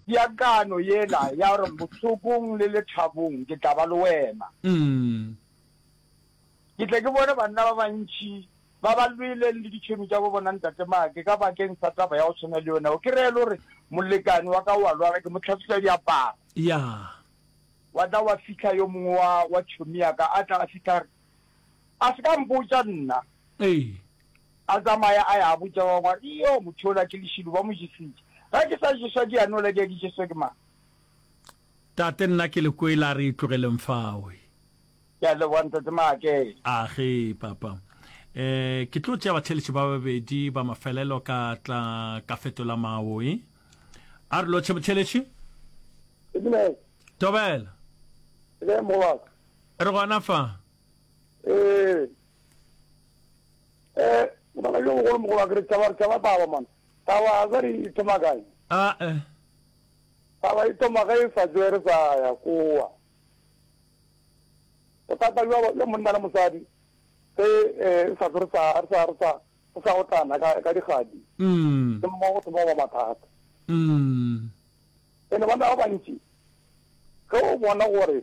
Peakano yela ya gore bohlokong le lethabong ke tla ba le wena. Ke tle ke bone banna ba bantši ba ba lweleng le ditšhwene tša bo bona ntate make ka bakeng sa taba ya go tshwana le yona eo. Ke reye le gore molekane wa ka o a lwala, ke mo tlhatswisa diaparo. Wa tla wa fihla yo mongwe wa tšhomi ya ka, a tla a fihla a re, A se ka mpotša nna. Ee. A tsamaya a ya a botša ba bangwe a re, Iyoo, motho yola ke lešilo, ba mo jesitše. Ge ke sa jeswa ke ya nola ke ya ke jeswe ke mang? Tate, nna ke le kwele, a re e tlogeleng fao. E. Ke a leboga, Ntate Maakele. A ge, Papa. E, ke tlo tšea batheeletši ba babedi ba mafelelo ka tla ka fetola mawo. E. A re lotšhe motheeletši. Amen. Tobela. Amen, morwa ka. Re gona fa? Ee. Eh, ngwana yo mogolo mogolo a ke re taba taba taba man. Taba a re e thoma kae? A e. Taba e thoma ga e sa tswe re sa ya koa. Bothata jwa ba monna le mosadi se eh sa re sa re sa re sa re sa otlana ka ka digadi. Mm. Ke mo go thoma ba mathata. Mm. Ene bana ba bantši ge o bona gore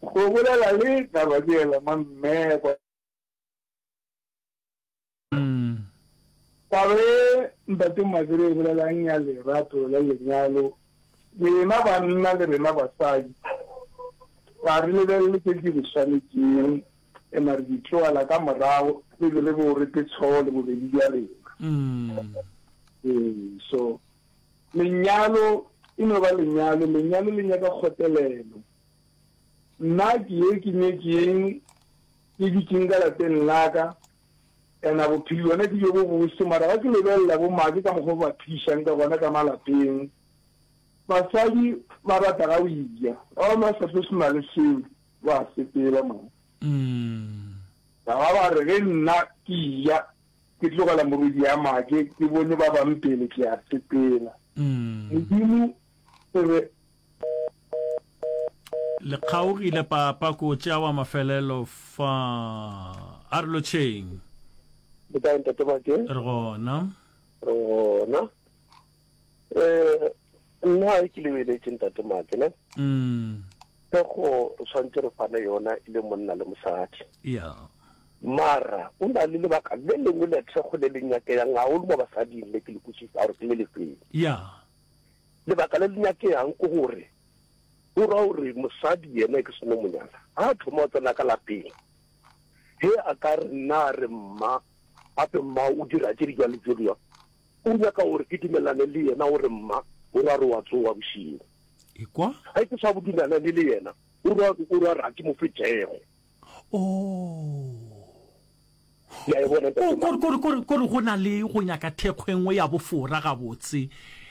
Go bolela le taba ke yela ma mmekwa. Taba e ntate Mazire e bolelang ya lerato la lenyalo, rena banna le rena basadi ga re lebelele tse di re swanetšeng ema re di tloela ka morago re be re bo re petshoo le bobedi bja rena. Ee, so lenyalo e no ba lenyalo, lenyalo le nyaka kgotelelo, Nna ke ye ke nyetše yeng ke dutšeng ka lapeng laka and a bophedi bona ke bjo bo bose mara ga ke lebelela bo make ka mokgwa o ba phedišang ka gona ka malapeng basadi ba rata ga o ija ba ba sa tlo sena le seo ba sepela mo ba ba re ge nna ke ija ke tlogela morwedi ya make ke bone ba bang pele ke a sepela modimo re Le kgaogile papa ko tša wa mafelelo fa a re lotšheng. Ke kae ntate Mate? Re gona. Re gona. Eh nna ke le beletše ntate Mate ne. Mm. Ke go tshwantse re fane yona ile monna le mosadi. Yeah. Mara o na le lebaka le lengwe le thekgo le le nyakeyang haholo mo basading le ke le kutsisa gore ke le lefeng. Yeah. Lebaka le le nyakegang ke gore go ra gore mosadi yena e ke seno monyala ga a thoma go tsena ka lapeng he a ka re nna a re mma gape mma o dira tse di jwa le tse dingwa o nyaka gore ke dumelane le yena gore mma o ra re wa tsowa bošego ga ke sa bo dumelane le yena o ra re a ke mo fetego kore go na le go nyaka thekgo e nngwe ya bofora gabotse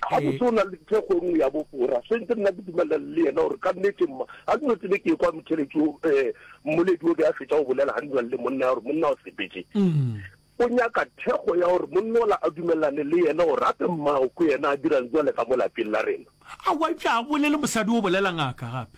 ga botse o na le thekgo e nngwe ya bofora sentse nna ke dumelela le yena gore ka nnete mma ga ke notsebe ke kwa motheletsi um eh, mmoledi o be a fetsa go bolela ga ndulang le monna ya gore monna o sepetse mm. o nyaka thekgo ya gore monna ola a dumelelane le yena gore gape mmao ko yena a dirang jwale ka mo lapeng la rena a wa pja a bolele mosadi o bolelang aka gape